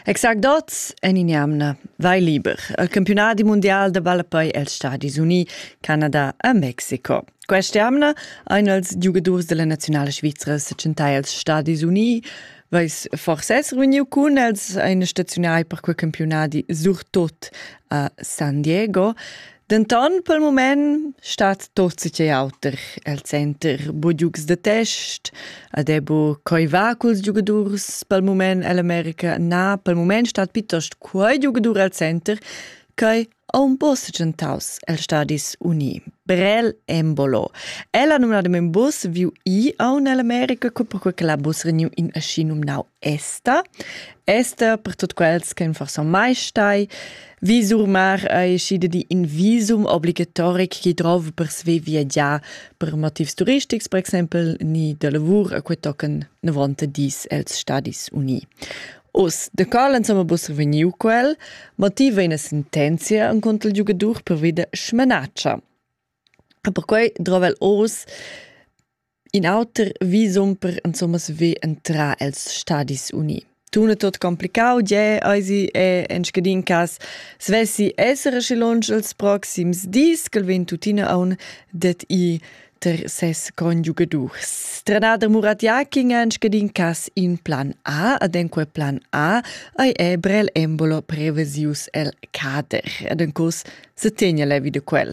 Exact oz en in'jamna vai liber al campiunadi mundial da ballapei els Stadis Uni, Canada e Mexico. Questa jamna ein els giugadurs della nazionale svizra sechentai els Stadis Uni. Vais forse esser vegniu cun els ein staziunai per quei campiunadi surtot a San Diego. Denton pel mument stat tot che auter el center, bu giugs da test, ad è bu coi va culs giugadurs pel mument ell'America, na, pel mument stat piuttost quei giugadur el center ch'ei aun po segientaus el Stadis Uni, Brel Embolo. El ha numnadament bus viu i aun ell'America, co perquei che la bus reniu in aschi numnau Esta. Esta per tot quels che non far son mai stai, Visumar ei schide di in visum obligatoric chi drov per sve viagiar per motivs turistics, per exempel ni da lavur, a quei tocan 90 dis els Stadis Uni. Us, de cal insomma bus vegniu quel, motiv è una sentenzia in conto il giocatore per vita schmenatscha. E perquei drova el os In auter visum per insomma saver entrar els Stadis Uni. Tun è tot complicau, gie, eisi è en scadin cas svessi essere schi lunsch els proxims dis, ch'el vegn tuttina aun det i ter ses conjugadurs. Stranader Murat Jaking è en scadin cas in plan A, ad en quel plan A ei è brel embolo prevesius el cader. Ad en curs se tegna levi de quel.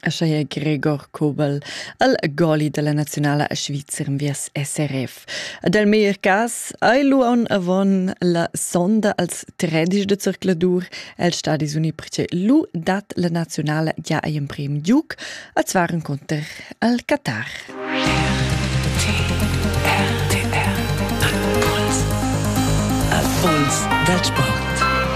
Aschia è Gregor Kobel al goli dalla nazionala svizzer en viers SRF. Ad el meglier cas ei lu aun avon la sonda als tredici de zircladur el stadis uni perché lu dat la nazionala gia ei emprem giug a zwaren conter al Qatar. Al puls dal sport.